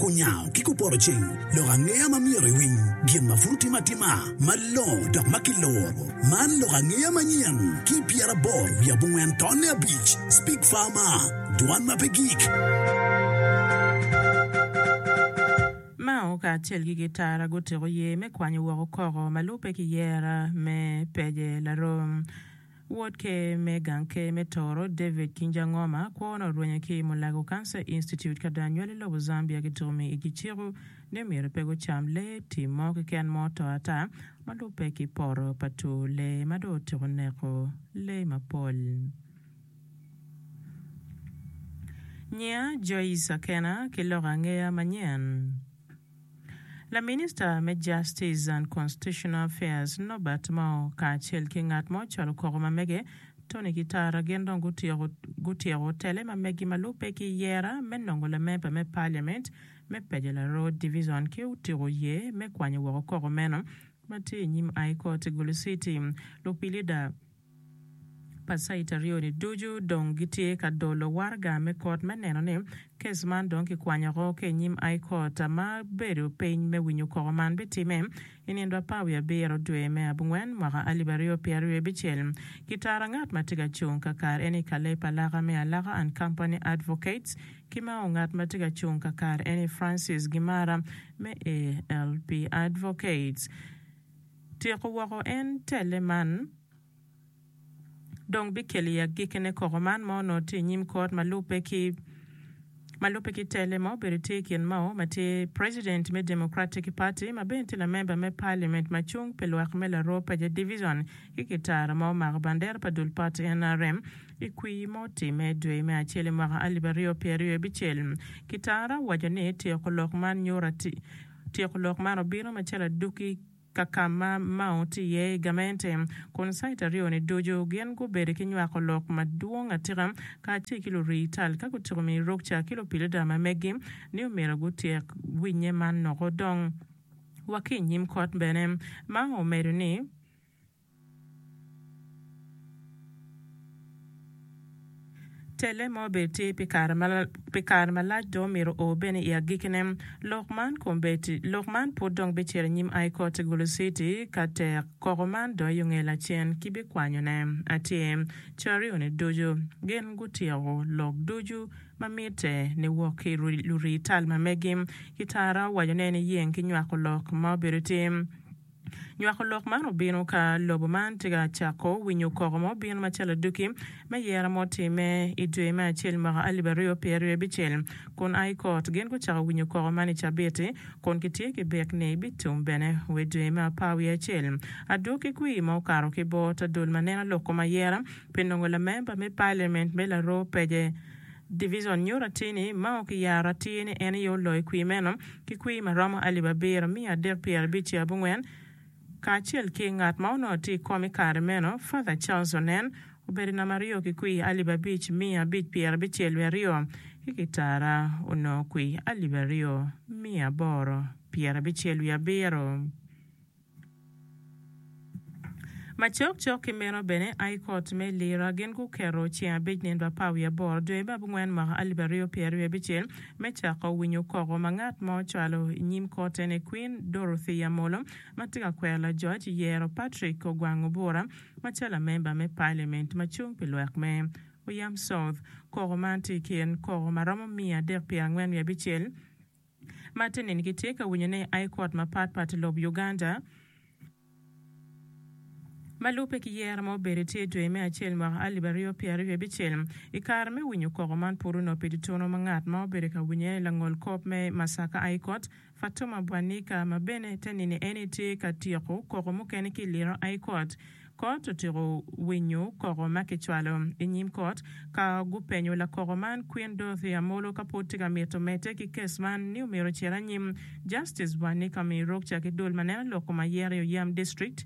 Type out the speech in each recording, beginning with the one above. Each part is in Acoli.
Kunyango ki kupoto ceng lok angeya ma myero iwiny gin ma pud otime atima malongo dok ma kiluro. Man lok angeya manyen ki pyeraboro wiye abongwen tonne abic, Speak Farmer, Dwan ma pe gik. Mao kacel ki Gitara gutiko yer me kwanyo woko koko ma lubbe ki yer me Peje Larom. Wod Ker me Gang Ker me Tooro, David Kinjangoma, kwo ni orwenyo ki i Mulago Cancer Institute ka dong anywali lobo Zambia gitumi igi ciko ni myero pe gucam lee tim mo keken ma oto ata ma lubbe ki poto pa tur lee ma dong otyeko neko lee mapol. Nyinga Joyce Akena ki loko angeya manyen. Laminista me Justice and Constitutional Affairs, Norbert Mao, kacel ki ngat mo calo koko ma mege, Tony Kitara gin dong gutyeko tele ma megi ma lubbe ki yera me nongo lamemba me Parliament me Paja Laroo Division ki otiko ye me kwanyo woko koko meno ma tye inyim High Court i Gulu City. Lupilida. pa cait aryo-ni ducu dong gitye ka dolo waraga me kot me neno ni kes man dong kikwanyo oko ki i nyim High Court ma bedo piny me winyo koko man bitimme i nino apa wiye abiro dwe me abungwen mwaka alip aryo pyera ryo abicel. Kitara ngat ma tye ka cung kakare en ni Caleb Alaka me Alaka and Company Advocates ki Mao ngat ma tye ka cung kakare en ni Francis Gimara me ALP Advocates. Tyeko woko en telle man dong bikelo i agikki ne koko man ma onongo tye i nyim kot ma lubbe ki ma lubbe ki telle ma obedo tye i kin Mao ma tye president me Democratic Party ma bene tye lamember me parliament ma cung pi lwak me Laroo Paja Division ki kitara ma omako bandera pa dul party nrm i kwir ma otimme dwe me acel i mwaka alip aryo pyeraryo bicel. Kitara owaco ni tyeko lok man nyuto Tyeko lok man obino macalo aduki ka ka ma Mao tye iye i gamente, kun caita aryo-ni ducu gin gubedo ki nywako lok madwong atika kacel ki lurii tal ka gutyeko miyo rukca ki lupilida ma megi ni omyero gutyek winnye man noko dong wa ki i nyim kot. Bene, Mao omedo ni, Telle mo bene tye pi kare malac dong omyero o bene i agikkine. Lok man pud dong bicito anyim I koti Gulu City ka tek koko man dong i onge lacen ki bikwanyone atir. Carioni ducu gin gutyeko lok ducu ma mitte ni wok ki lurii tal ma megi ki tara wacone ni yeng ki nywako lok ma obedo tim. Nywako lok man obino ka lobo man tye ka cako winyo koko mo bino macalo aduki me yero ma otimme i dwe me acel mwaka alip aryo pye aryo abicel kun a i kot. Gin gucako winyo koko man i cabiti kun kitye ki bik ni bitum bene we dwe me apar wiye acel. Adwo ki kwir ma okato ki bor ta dul ma neno lok kom ayera pi nongo lamemba me Paliament me laroo pece. Divicion nyuto atir ni Mao kiyaro atir ni en aye oloyo i kwir meno ki kwir ma romo alip abiro, miya adek pyera abic ki abongwen, kacel ki ngat ma onongo tye i kom i kare meno, Father Charles Onen, obedo namba aryo ki kwir alip abic, miya abic pyera abicel wiye aryo, ki kitara onongo kwir alip aryo, miya aboro pyera abicel wiye abiro. Macok cok ki meno bene, I Kot me Lira gin guketo ceng abic nino pa apar wiye aboro dwe me abongwen mwaka alip aryo pyeraryo wiye abicel me cako winyo koko ma ngat ma ocwalo i nyim Kot en aye Kwin Dorothy Amolo ma tye ka kwero lajoc i yero Patrick Ogwang Obura macalo lamemba me Paliament ma cung pi lwak me Oyam South. Koko man tye i kin koko ma romo miya adek pyerangwen wiye abicel. Matinin kitye ka winyo ni High Court mapat pat i lob Uganda ma lubbe ki yero ma obedo tye i dwe me acel mwaka alip aryo pyera aryo abicel i kare me winyo koko man pud onop i tutunu ma ngat ma obedo ka winyo aye langol kop me Masaka High Court Fatuma Bwanika ma bene te nini eni tye ka tyeko koko mukene ki liro High Court Kot otyeko winyo koko ma kicwalo. I nyim kot, ka gupenyo lakoko man Kwin Dorothy Amolo ka pud tye ka mito medde ki kes man ni omyero ocer anyim, Justice Wanni Kami Rukca ki dul ma neno loko ma yero i Oyam District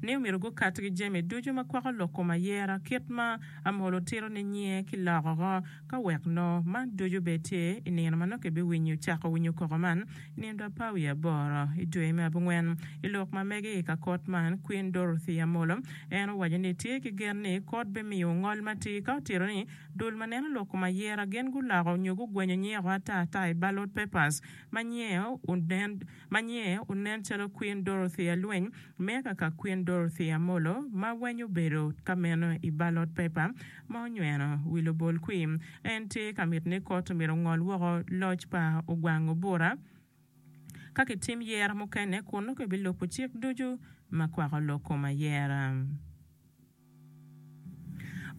ni omyero gukat ki jami ducu ma kwako loko ma yera kit ma Amolo tito ni nyinge ki loko. Ka wek loo man ducu bed tye i nino ma nongo kibiwinyo cako winyo koko man i nindo apar wiye aboro i dwe me abongwen. I lok ma mege i ka kot man, Kwin Dorothy Amollo en owaco ni tye ki gen ni kot bimiyo ngol matir ka otito ni dul ma neno lok kom ayera gin guloko nyo gugwenyo nyeko ata ata i ballot papers ma nyieo onen ma nyiye onen calo Kwin Dorothy Alweny me kaka Kwin Dorothy Amolo ma weny obedo ka meno i balot pepa ma onyweno wi lubol kwim. En tye ka mito ni kot myero ongol woko loc pa ogwang Obura ka kitim yero mukene kun nongo ebilubo cik ducu ma kwako lok kom ayera.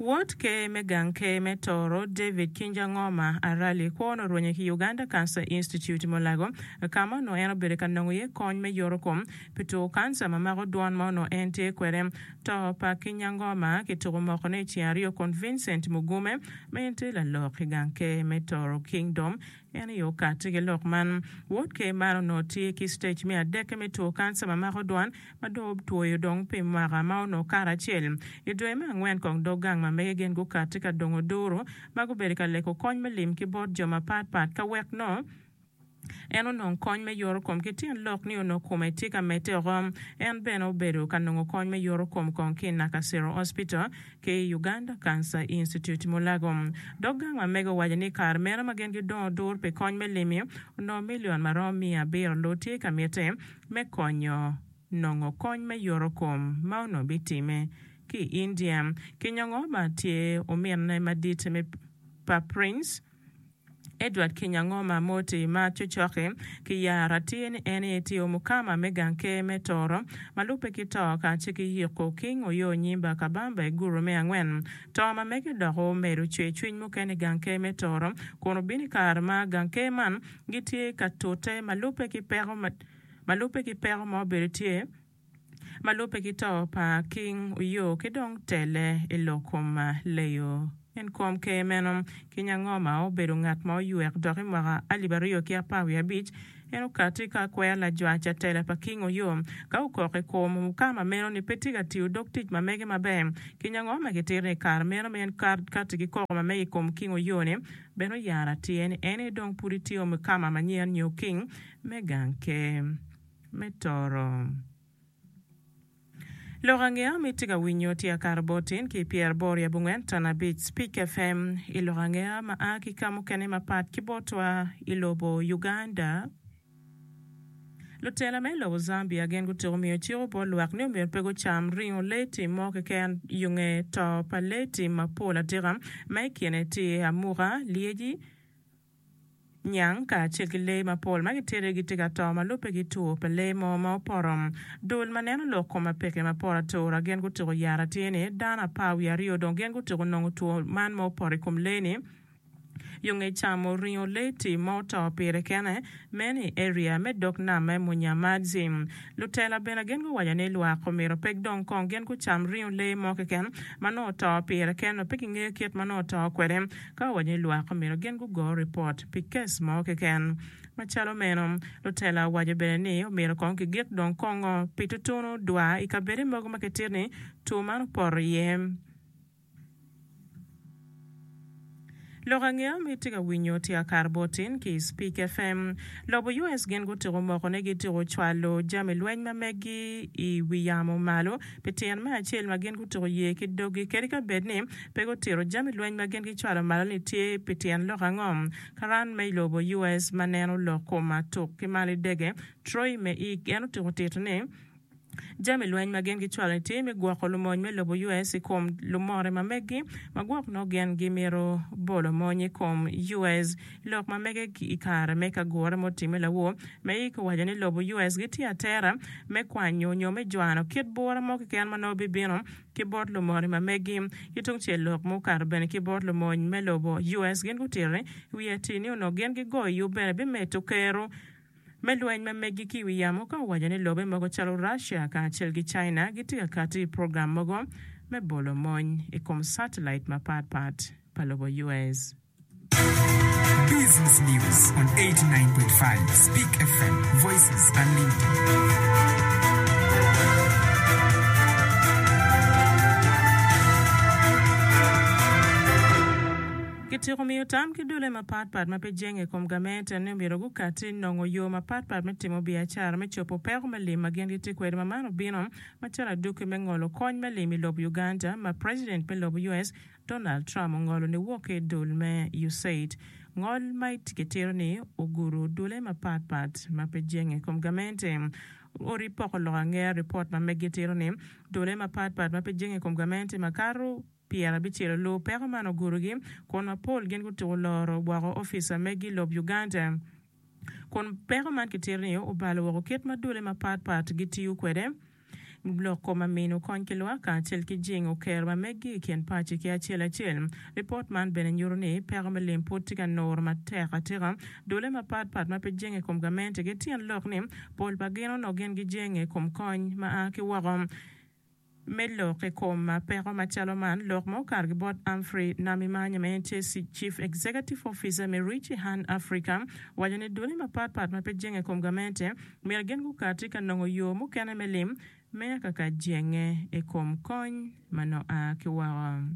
Wod Ker me Gang Ker me Toro, David Kinjangoma Arali, kwo onongo orwenye ki Uganda Cancer Institute i Mulago, ka ma onongo en obedo ka nongo iye kony me yoto kom pi two kanca ma mako dwon ma onongo en tye kwede. To pa Kinyangoma kituko mokone i ceng aryo kun Vincent Mugume, ma en tye lalok i Gang Ker me Toro Kingdom, en aye okatti ki lok man. Wod Ker man onongo tye ki stej me adekke me two kanca ma mako dwon, ma dong otwoyo dong pi mwaka ma onongo kato acel. I dwe me angwen kong dog gang ma mege gen gukatti ka dongo duru ma gubedo ka leko kony me lim ki bot jo mapat pat ka wek nongo en onong kony me yoto kom ki tyen lok ni onongo kome tye ka medde oko. En bene obedo ka nongo kony me yoto kom kong ki i Nakasero Hospital ki i Uganda Cancer Institute, Mulago. Dog gang ma mege owaco ni i kare meno ma gen gidongo duru pi kony me lim-mi, onongo milion ma romo miya abiro loo tye ka mitte. me konyo nongo kony me yoto kom ma onongo bitimme ki i India. Kinyongo ma tye ominne madit me pa Prince Edward Kinyangoma Moti ma cocoki ki yara tye ni en aye tye omukama me gang ker me Toro ma lubbe ki to kacel ki Yiko King Oyo Onyimba Kabamba i Guru me angwen. To ma mege dok omedo cwercwiny mukene i gang ker me Toro kun obino i kare ma gang ker man gitye ka tute ma lubbe ki peko ma ma lubbe ki peko ma obedo tye ma lubbe ki to pa King Oyo ki dong tele i lok kom leyo en kom ker meno King Angoma obedo ngat ma oywek dok i mwaka alip aryo ki apar wiye abic en okati ka kwero lajwa ca tela pa King Oyo ka okok i kom mukama meno ni pe tye ka tiyo dog tic ma mege maber King Angoma kitito ni i kare meno ma en kati ki koko ma mege i kom King Oyo ni Bene oyaro atir ni en aye dong pud itye omi kama manyen nyo king me gang ker me toro. Lok ange ma itye ka winyo tye akato botin ki pyeraboro i abongwen ton abic Speak FM i lok ange ma a ki ka mukene mapat ki botwa i lobo Uganda. Lutela me lobo Zambia gin gutuko miyo cik bot lwak ni omyero pe gucam ringo lee tim mo keken yo nge to pa lee tim mapol atika ma i kine tye amuka, lyeci, nyang kacel ki lee mapol ma gitite gitye ka to ma lubbe ki two pa lee mo ma opoto. Dul ma neno lok kom apeke mapol atura gin gutuko yat atir ni dano apar wiye aryo dong gin gutuko nongo two man ma opoto i kom lee ni. Yo nge camo ringo leti ma oto pire kene meno i area me dog nam me Munyamazi. Lutela bene gin guwaco ni lwak omyero pek dong kong gin gucam ringo lee mo keken ma nongo oto pire ken nyo pe gingeyo kit ma nongo oto kwede ka owaco ni lwak omyero gin gugo ripot pi kes mo keken macalo meno. Lutela owaco bene ni omyero kong kigik dong kongo pi tutunu dwa i kabede mogo ma kitito ni two man opoto iye. Lok ange ma itye ka winyo tya kare bot tin ki i Speak FM. Lobo US gin gutyeko moko ni gityeko cwalo jami lweny ma meggi i wi yamo malo pi tyen me acel ma gin gutyeko ye ki doggi kadi ka bed ni pe gutito jami lweny ma gin gicwalo malo ni tye pi tyen lok ango. Karan me i lobo US ma neno lok kom atuk ki malo idege Troy Meeik en otyeko tito ni jami lweny ma gin gicwalo i tim me gwoko lumony me lobo US i kom lumore ma meggi ma gwok nongo gin gimito bolo mony i kom US. Lok ma mege i kare me kagure ma otimme lawor me ik owaco ni lobo US gitye atera me kwanyo nyo me jwano kit bura mo keken ma nongo bibino ki bot lumore ma meggi. Ki tung cel lok ma okato bene ki bot lumony me lobo US gin gutito wi atir ni onongo gin gigoyo yub bene bimedo keru me lweny ma meggi ki i wi yamo ka owaco ni lobe mogo calo Russia kacel ki China gitye ka kato i program mogo me bolo mony i kom satellite mapat pat pa lobo US. Business News on 89.5 Speak FM, Voices Unlimited. Kityeko miyo tam ki dulle mapatpat ma pe jenge i kom gamente ni omyero gukatti nongo yo mapatpat me timo biacara me cobo peko me lim ma gin gitye kwede ma man obino macalo adwoki me ngolo kony me lim i lobo Uganda ma President me lobo US Donald Trump ongolo ni wok ki idul me Usaid ngol ma kitito ni oguro dulle mapatpat ma pe jenge i kom gamente odi poko lok angera report ma megi tito ni dulle mapatpat ma pe jenge i kom gamente makato Pire abicel lu peko man ogurogi kun mapol gin gutuko loro woko opica megi lob Uganda kun peko man kitito ni obalo woko kit ma dule mapat pat gitiyo kwede, loko ma mino kony ki lwak kacel ki jingo kero ma megi i kin paci ki acel acel. Lipot man bene nyuto ni peko me lim pud tye ka nuru matek atika dule mapat pat ma pe jenge i kom gamente ki tyen lok ni pol pa gin onongo gin gijenge i kom kony ma a ki woko. me lok i kom peko macalo man, lok ma okargi bot Humphrey Namimanya ma en tye Chief Executive Officer me Reach a Hand Africa, waco ni duli mapat pat ma pe jenge i kom gamente myero gin gukati ka nongo yo mukene me lim, meya kaka jenge i kom kony ma nongo a ki woko.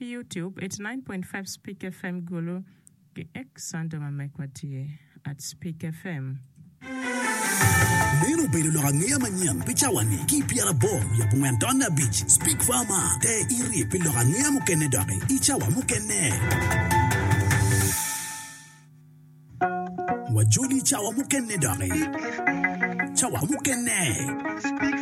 Youtube it's nine point five Speak FM Gulu ki Xander ma mekwa tye at Speak FM. Meno obedo lok angeya manyen pi cawa-ni ki i pyera aboro wiye abongwen taun me abic. Speak Farmer, te irye pi lok angeya mukene doki i cawa mukene. Wajoli i cawa mukene doki. Cawa mukene.